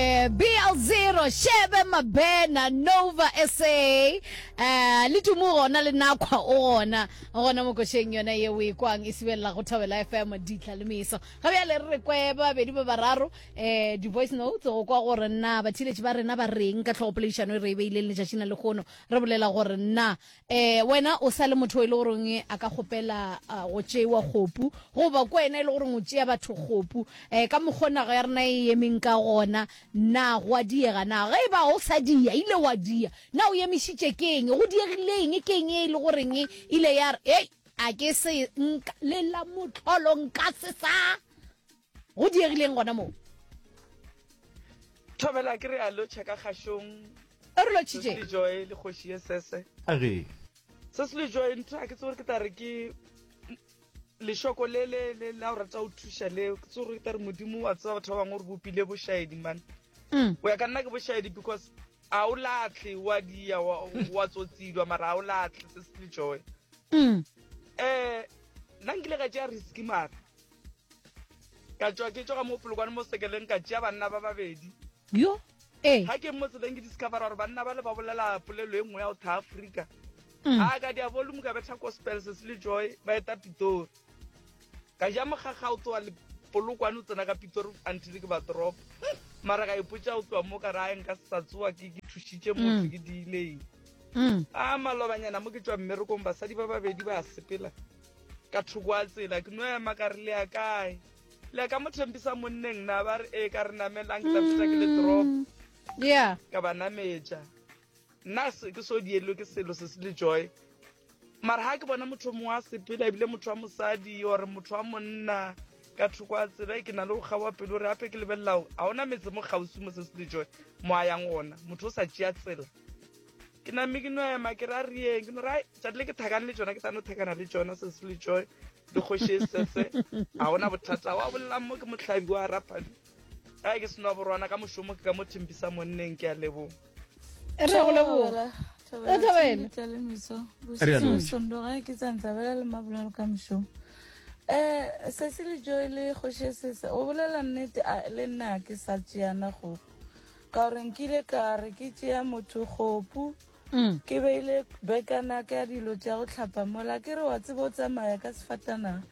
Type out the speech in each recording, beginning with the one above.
Bial Zero, Shebe Mabena, Nova SA, eh, le Tumu gona le Nakwa o gona, gona mo košeng yona ye o e kwang e sibelela go Thobela FM ditla le meso. Ga bjale re re kwe ba babedi ba bararo eh, di-voice notes go kwa gore na bathiletši ba rena ba reng ka tlhogopoledišano e re e beileng letšatšing la lekgono. Re bolela gore na eh wena o sa le motho e le goreng a ka gopela ah, go tšewa kgopu goba ko wena e le goreng o tšea batho kgopu eh ka mokgwa nago ya rena e emeng ka gona na go a diega na ge e ba o sa dia ile wa dia na o emišitše ke eng go diegileng ke eng e le goreng e ile ya re ei a ke se nka lela motlholo nka se sa go diegileng gona moo thobela ke re a lotšha ka kgašong e re lotšhitše joy le kgoši ye sese a re se se le joy ntho a ke tsore ke tla re ke lešoko le le le la o rata o thuša le ke tsore ke tla re modimo wa tseba batho ba bangwe gore bopile bošaedi man mm. o ya ka nna ke bošaedi because a o latlhe wa dia wa tsotsidwa mara a o latlhe se se le joy um nna nkile ka tšea riski mara ka tšwa ke tšoga mo polokwane mo sekeleng ka tšea banna ba babedi yo ee ga ke mo tseleng ke discovera gore banna ba le ba bolela polelo e nngwe ya go tha afrika mm. a ka dia volume ka betha gospels se le joy ba eta pitori ka ja mogaga o tsoa polokwane o tsena ka pitori until ke ba drop mara ka ipotsa o tloa mo ka ra nka sa tsoa ke ke thušitše motho mm. ke diileng mm. a malobanyana mo ke tswa mmerekong basadi ba babedi ba sepela ka thoko a tsela ke no ema ka re le ya kae le ya ka mo thempisa monneng na ba re ee ka re namelang ke tla feta ke le drop mm. ya ka ba nametša nna ke so dielo ke selo se se le joy mara ga ke bona motho mongwe a sepela ebile motho wa mosadi ore motho wa monna ka thoko a tsela e ke na le go kgaoa pelo gore gape ke lebelelang ga ona metse mo kgausi mo se se le joy mo a yang ona motho o sa tšea tsela ke name ke no ema ke ra rieng ke no ra tšatile ke thakane le tsona ke sa no thakana le tsona se se le joy le kgoši e sese ga gona bothata wa bolelang mo ke motlhabi wa raphabi a ke seno borwana ka mošomo ke ka mo thimpisa monneng ke a leboga e re go leboga sondoga ke tsantsabela le mabolelo ka mošomo um sese le joy le kgoši e sese o bolela nnete le nna ke sa tšeana gogo Ka gore nkile ka re ke tšea motho kgopu, ke beile bekana ka dilo tša go tlhapa mola, ke re wa tseba o tsamaya ka sefatanaga,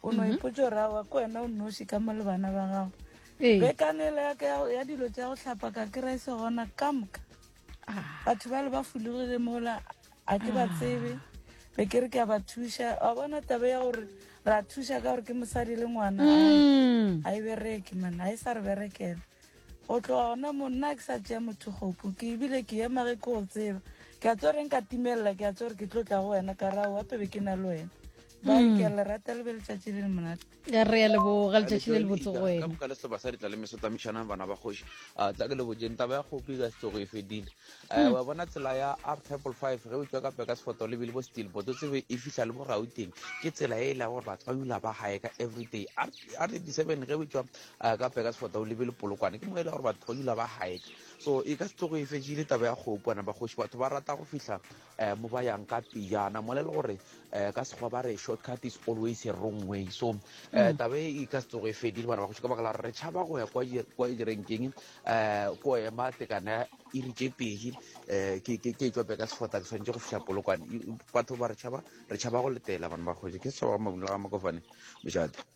o no ipotsa gore awa ke wena o nnoši ka mo le bana ba gago. Bekanele ya ka ya dilo tša go tlhapa ka kry se gona ka moka batho ba le ba fologile mola a ke ba tsebe be ke re ke a ba thuša wa bona taba ya gore ra thuša ka gore ke mosadi le ngwana a e bereke mana a e sa re berekela Go tloga gona monna ke sa tšea motho kgopo ke ebile ke ema ge ke go tseba ke a tso reng ka timelela ke a tso gore ke tlo tla go wena ka rao gape be ke na le wena ba hmm. ke a le rata le be letšatši le le monate re ya leboga letšatši le le botse go wena ka le seba sa ditla le meso tsamaišanang bana ba kgoši a tla ke le bojeng taba ya kgopi ka setsogo e fedile hmm. wa bona tsela ya r triple five ge o tswa ka peka sefoto le bile bo steel boto tsebe e fihla le bo gauteng ke tsela e e leng gore batho ba dula ba gae ka everyday r eighty seven ge o tswa a ka peka sefata o lebele polokwane ke mo e le gore batho ba dula ba hike so e ka se tlogo e fetšile taba ya kgopo ana bagoši batho ba rata go fihla um mo ba yang ka pejana mo le le gore um ka sekgwa ba re short cut is always a wrong way so um taba e ka se tlogo e fedile bana bagoši ka baka la gore re tšhaba go ya kwa direnkeng um ko ema tekana e re tše pedi um ke e tswa peka sefata ke tshwanetse go fihla polokwane batho ba re tšhaba re tšhaba go letela bana bagoši ke setšhaba ga mabunela ga makofane mojate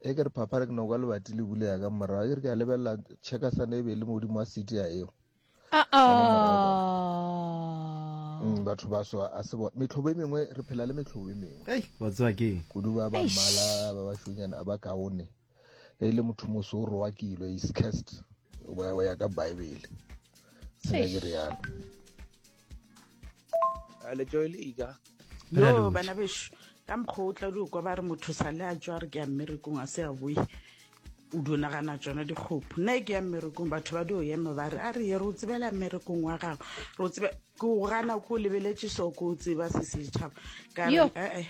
e ke re phapha re ke no kwa lebati le bule ya ka morago ke re ke a lebelela chekasane e be le modimo wa city ya eo ah, ah. mm, batho ba so a se bona metlhobo e mengwe re phela le metlhobo e mengwe hey, batswa ke kudu ba ba mmala ba ba shonyana a ba kaone e le motho moso o rowa kilo is cast o ya ka bible sena ke rialo letšoe le ika yo bana bešo ka mokgwa o tla di kwa ba re motho sa le a tswa re ke ya mmerekong a se a boe o di nagana tsona dikgopo nna e ke ya mmerekong batho ba di o ema ba re a re ye re o tsebela mmerekong wa gago re o tsebe ke o gana ko o lebeletse so ko o tseba se setšhaba ka re ee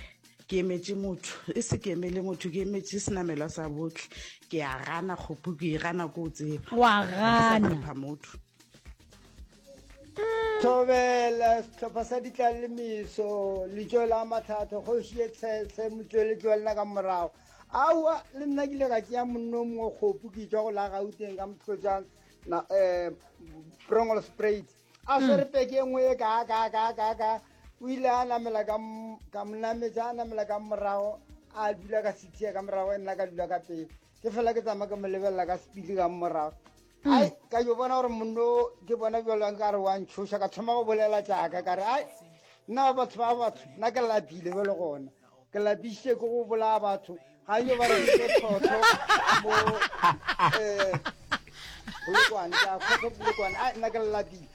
ke emetse motho e se ke emele motho ke emetse senamelwa sa botlhe ke ya gana kgopo ke e gana ko o tseba wa gana motho thobela setlhopha sa ditlang le meso letso la matlhatlho kgoši e tshese motsweletsi wa lena ka morago aowa le nna ke ile ka tšea monno mongwe kgopu ke tswa go la gauteng ka motlotšang um eh, prongolo sprate a hmm. swere peke e nngwe e kaa kaa kaa kaa kaa o ile a namela ka monametsa a namela ka morago a dula ka sixia ka morago e nna ka dula ka pele ke fela ke tsamaya ke mo lebelela ka sepili ka morago hmm. ai ka yo bona gore monno ke bona bjolong ka re wa ntshoša ka thoma go bolela jaaka ka re ai nna batho ba batho nna ke lapile be le gona ke lapisitse ke go bolaya batho ga yo ba reke tlhotlho mo um bolokwane ka kgotho bolokwane ai nna ke lapile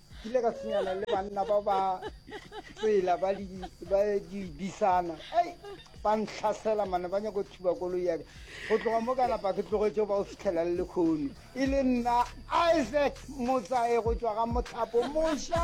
ke ile ka senyana le banna ba ba tsela ba dibisana ei ba ntlhasela mane ba nyako thuba koloi yaka go tloga mo ka napa ke tlogetso ba o fitlhela le lekgono e le nna isaac motsae go tswa ga mothapo moša